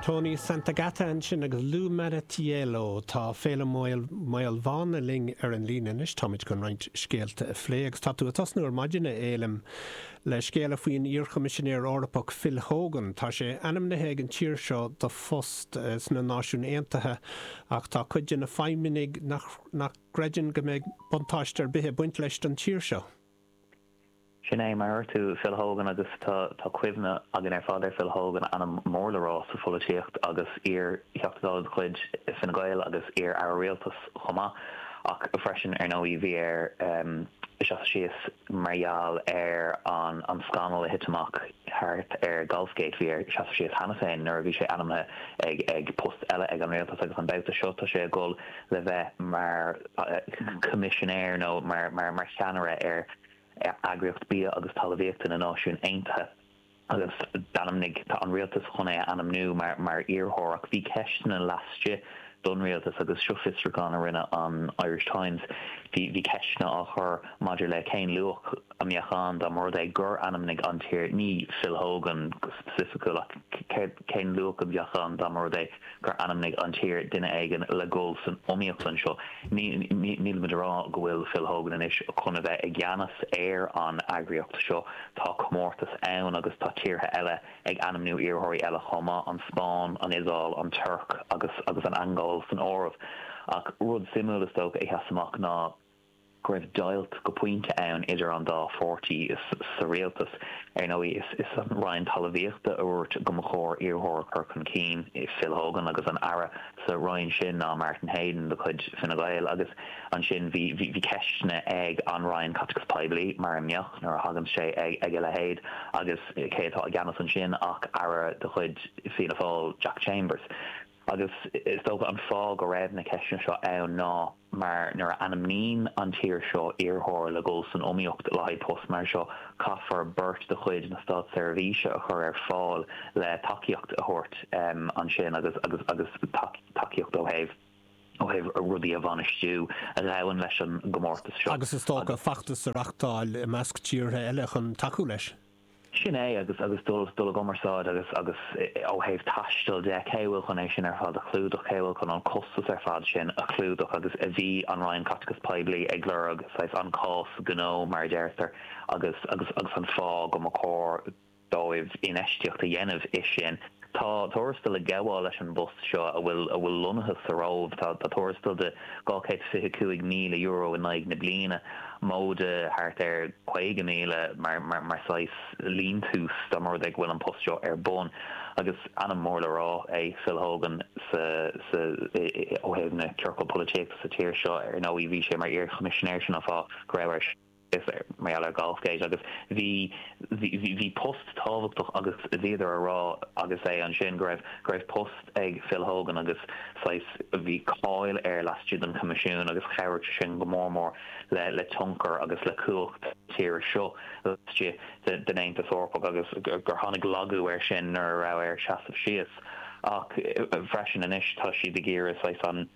Toni Santagata ansin agus Lu Maritiello. Tá Féilim Ó Maolmhána linn ar an líne anois. Táimid chun roinnt scéalta a phlé agus tá tú ag tosnú ar maidin, a Fhéilim, le scéala faoin iarchoimisinéir Eorpach Phil Hogan. Tá sé ainmnithe ag an tír seo do phost sna Náisiúin Aontaithe ach tá cuid de na feidhmeannaigh nach gcreideann go mbeidh buntáiste ar bith ag baint leis don tír seo. Sin é, mar a dúirt tú, Phil Hogan agus tá cuimhne againn ar fad ar Phil Hogan, ainm mór le rá sa pholaitíocht agus iar-Theachta Dála de chuid Fine Gael agus iar-Aire Rialtais chomh maith, ach freisin, ar ndóigh, bhí air seasamh síos mar gheall ar an scannal a thit amach thart ar Golfgate. Bhí air seasamh síos cheana féin nuair a bhí sé ainmnithe ag post eile ag an Rialtas agus an babhta seo tá sé ag dul le bheith mar Choimisinéir nó mar cheannaire ar Eagraíocht Bia agus Talmhaíochta na Náisiún Aontaithe agus d'ainmnigh an rialtas chun é a ainmniú mar iarrthóir. Ach bhí ceisteanna laistigh don rialtas, agus seo fiosrúchán a rinne an Irish Times, bhí ceisteanna á chur maidir le cén luach a mbeadh ann dá mba rud é gur ainmnigh an tír, ní Phil Hogan go specificiúil, ach cén luach a bheadh ann dá mba rud é. gur ainmnigh an tír duine éigin le dhul san iomaíocht anseo. Nílimid a rá go bhfuil Phil Hogan anois chun a bheith i gceannas ar an eagraíocht seo. Tá comórtas ann agus tá tíortha eile ag ainmniú iarrthóirí eile chomh maith, an Spáinn, an Iodáil, an Tuirc agus an Angóil san áireamh. Ach rud suimiúil is dócha a sheas amach ná, go raibh deighilt go pointe ann idir an dá pháirtí sa rialtas. Ar ndóigh, is an Roinn Talmhaíochta a dhúirt go mba chóir iarrthóir a chur chun cinn, Phil Hogan, agus an Aire sa Roinn sin ná Martin Heydon de chuid Fine Gael. Agus ansin bhí ceisteanna ag an Roinn Caiteachais Poiblí, mar a mbeadh nuair a thagann sé ag a leithéid, agus cé atá i gceannas ansin ach Aire de chuid Fianna Fáil, Jack Chambers. Agus is dócha an fáth go raibh na ceisteanna seo ann ná mar nuair a ainmníonn an tír seo iarrthóir le dhul san iomaíocht le haghaidh post mar seo, caithfear beirt de chuid na státseirbhíse a chur ar fáil le tacaíocht a thabhairt ansin agus agus tacaíocht ó thaobh ó thaobh rudaí a bhainistiú a ghabhann leis an gcomórtas seo. Agus is dócha feachtas a reachtáil i measc tíortha eile chun tacú leis. Sin é, agus agus dul dul i gcumarsáid agus agus ó thaobh taistil de, cé a bhfuil chun é sin ar fad a chlúdach, cé a bhfuil chun an costas ar fad sin a chlúdach agus a bhí an Roinn Caiteachais Poiblí ag lorg, saghas, an cás gnó, mar a deirtear, agus agus agus an fáth go mba chóir dóibh infheistíocht a dhéanamh i sin. Tá tuarastal ag gabháil leis an bpost seo a bhfuil a bhfuil lonnaithe sa Róimh. Tá tá tuarastal de €225,000 in aghaidh na bliana, móide thart ar 50,000 mar mar mar saghas liúntas dá mba rud é go bhfuil an post seo ar bun. Agus ainm mór le rá é Phil Hogan sa sa i i ó thaobh na ciorcal polaitíochta sa tír seo. Ar ndóigh bhí sé mar iar-Choimisinéir sin an fáth go raibh air Is ar, mar gheall ar Golfgate agus bhí, bhí, bhí, bhí post tábhachtach agus bhíodar a rá agus é ansin go raibh, go raibh post ag Phil Hogan agus saghas, bhí cáil air laistigh den Choimisiún agus chabhraigh sé sin go mór mór le, le tionchar agus le cumhacht na tíre seo laistigh de, den Aontas Eorpach agus gur tháinig laghdú air sin nuair a raibh air seasamh síos ach freisin anois tá siad ag iarraidh saghas an,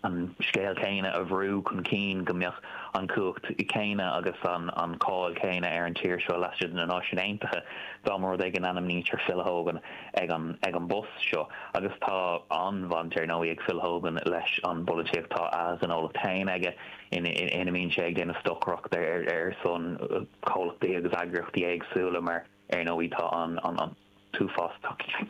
an scéal céanna a bhrú chun cinn, go mbeadh an chumhacht chéanna agus an cháil chéanna ar an tír seo laistigh de na Náisiúin Aontaithe dá mba rud é go n-ainmnítear Phil Hogan ar an bpost seo. Agus tá an-bhaint ar ndóigh ag Phil Hogan leis an bpolaitíocht, tá a ghnólacht féin aige ina mbíonn sé ag déanamh stocaireachta ar son comhlachtaí agus eagraíochtaí éagsúla mar, Ar ndóigh tá an t-uafás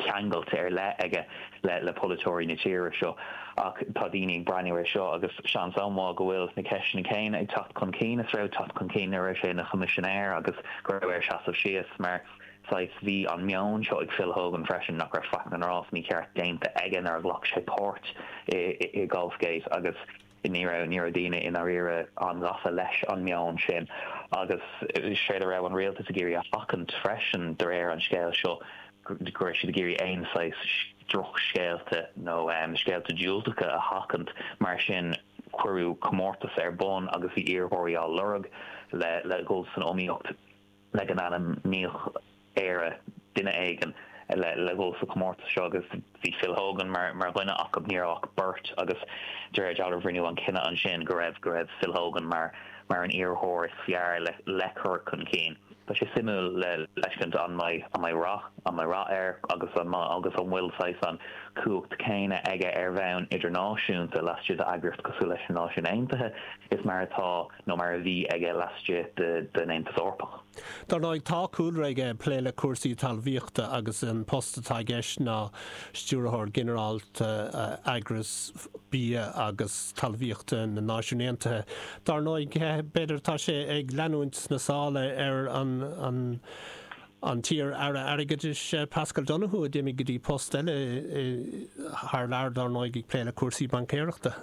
ceangailtí ar leith aige le polaiteoirí na tíre seo, ach tá daoine ag breathnú air seo agus seans an-mhaith go bhfuil na ceisteanna céanna ag teacht chun cinn is a raibh ag teacht chun cinn nuair a raibh sé ina Choimisinéir agus go raibh air seasamh síos mar, saghas, bhí an meon seo ag Phil Hogan freisin nach raibh faic na ngrást mícheart déanta aige nuair a ghlac sé páirt i Golfgate agus. Ní raibh daoine i ndáiríre an-ghafa leis an meon sin agus is éard a raibh an rialtas ag iarraidh a sheachaint freisin, de réir an scéil seo, go raibh siad ag iarraidh aon saghas drochscéalta nó scéalta diúltacha a sheachaint. Mar sin, cuireadh comórtas ar bun agus bhí iarrthóirí á lorg le dhul san iomaíocht. Le go n-ainmneodh Éire duine éigin le dhul sa chomórtas seo agus bhí Phil Hogan mar dhuine acu. Ní raibh ach beirt agus de réir dealraimh rinneadh an cinneadh ansin go raibh go raibh Phil Hogan mar an iarrthóir is fearr le cur chun cinn. Tá sé suimiúil le feiscint an mbeidh an mbeidh rath an mbeidh rath air agus an agus an bhfuil saghas an chumhacht céanna aige ar bhonn idirnáisiúnta laistigh d'eagraíocht cosúil leis na Náisiúin Aontaithe is mar atá nó mar a bhí aige laistigh den Aontas Eorpach. Dar ndóigh, tá cúlra aige ag plé le cúrsaí talmhaíochta agus an post atá i gceist ná Stiúrthóir Ginearálta Eagras Bia agus Talmhaíochta na Náisiún Aontaithe. Dar ndóigh, b'fhéidir, tá sé ag leanúint na sála ar an t-iar Aire Airgeadais Paschal Donohoe a d'imigh go dtí post eile thar lear, dar ndóigh, ag plé le cúrsaí baincéireachta.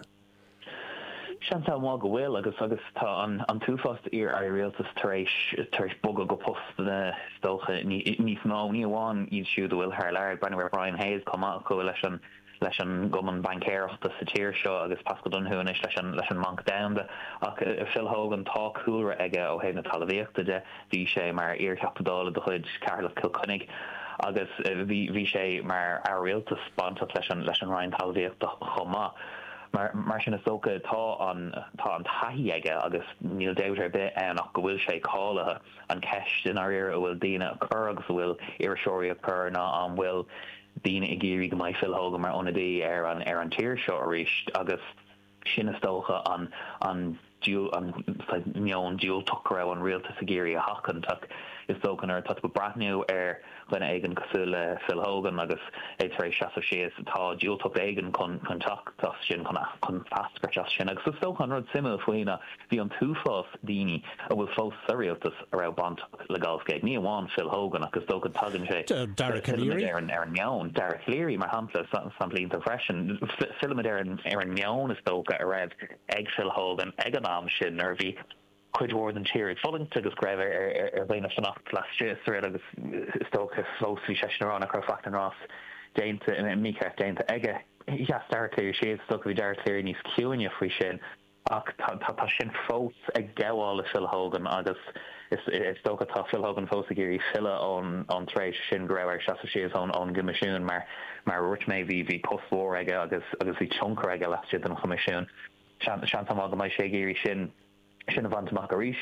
Seans an-mhaith go bhfuil, agus agus tá an t-uafás d'iar-airí rialtais tar éis tar éis bogadh go postanna, is dócha, níos mó, ní amháin iad siúd a bhfuil thar lear. Ag breathnú ar Brian Hayes chomh maith, a chuaigh leis an leis an gcumann baincéireachta sa tír seo, agus Paschal Donohoe anois leis an leis an mBanc Domhanda, ach Phil Hogan, tá cúlra aige ó thaobh na talamhaíochta de. Bhí sé mar iar-Theachta Dála de chuid Cheatharlach-Cill Chainnigh agus bhí sé mar Aire Rialtais bainteach leis an Roinn Talmhaíochta chomh maith. Mar sin is dócha tá an taithí aige agus níl dabht ar bith ann ach go bhfuil sé cáilithe. An cheist i ndáiríre a bhfuil daoine ag cur agus a bhfuil iriseoirí ag cur ná an bhfuil daoine ag iarraidh go mbeidh Phil Hogan mar ionadaí ar an tír seo arís agus Sin is dócha an an meon diúltach go raibh an rialtas ag iarraidh a sheachaint, ach is dócha nuair atá tú ag breathnú ar dhuine éigin cosúil le Phil Hogan agus é tar éis seasamh síos, tá diúltacht éigin chun teacht as sin, chun eascairt as sin. Agus is dócha an rud suimiúil faoi ná bhí an t-uafás daoine a bhfuil fós sa rialtas, a raibh bainteach le Golf Gate, ní amháin Phil Hogan ach is dócha go dtagann sé ar an meon, Dara Calleary mar shampla, samhlaítear freisin, fillimid ar an meon is dócha a raibh ag Phil Hogan ag an am sin nuair a bhí cuid mhór den tír ag fulaingt agus go raibh ar dhaoine fanacht laistigh den riail agus is dócha fós bhí seisean ag rá nach raibh faic as an tslí déanta, mícheart déanta aige. Sheas Dara Calleary síos, is dócha bhí Dara Calleary níos ciúine faoi sin. Ach tá sin fós ag gabháil le Phil Hogan agus is dócha tá Phil Hogan fós ag iarraidh filleadh ón tréimhse sin go raibh air seasamh síos ón gCoimisiún. Mar a dhúirt mé, bhí post mhór aige agus bhí tionchar aige laistigh den Choimisiún. Seans an-mhaith go mbeidh sé ag iarraidh sin a bhaint amach arís.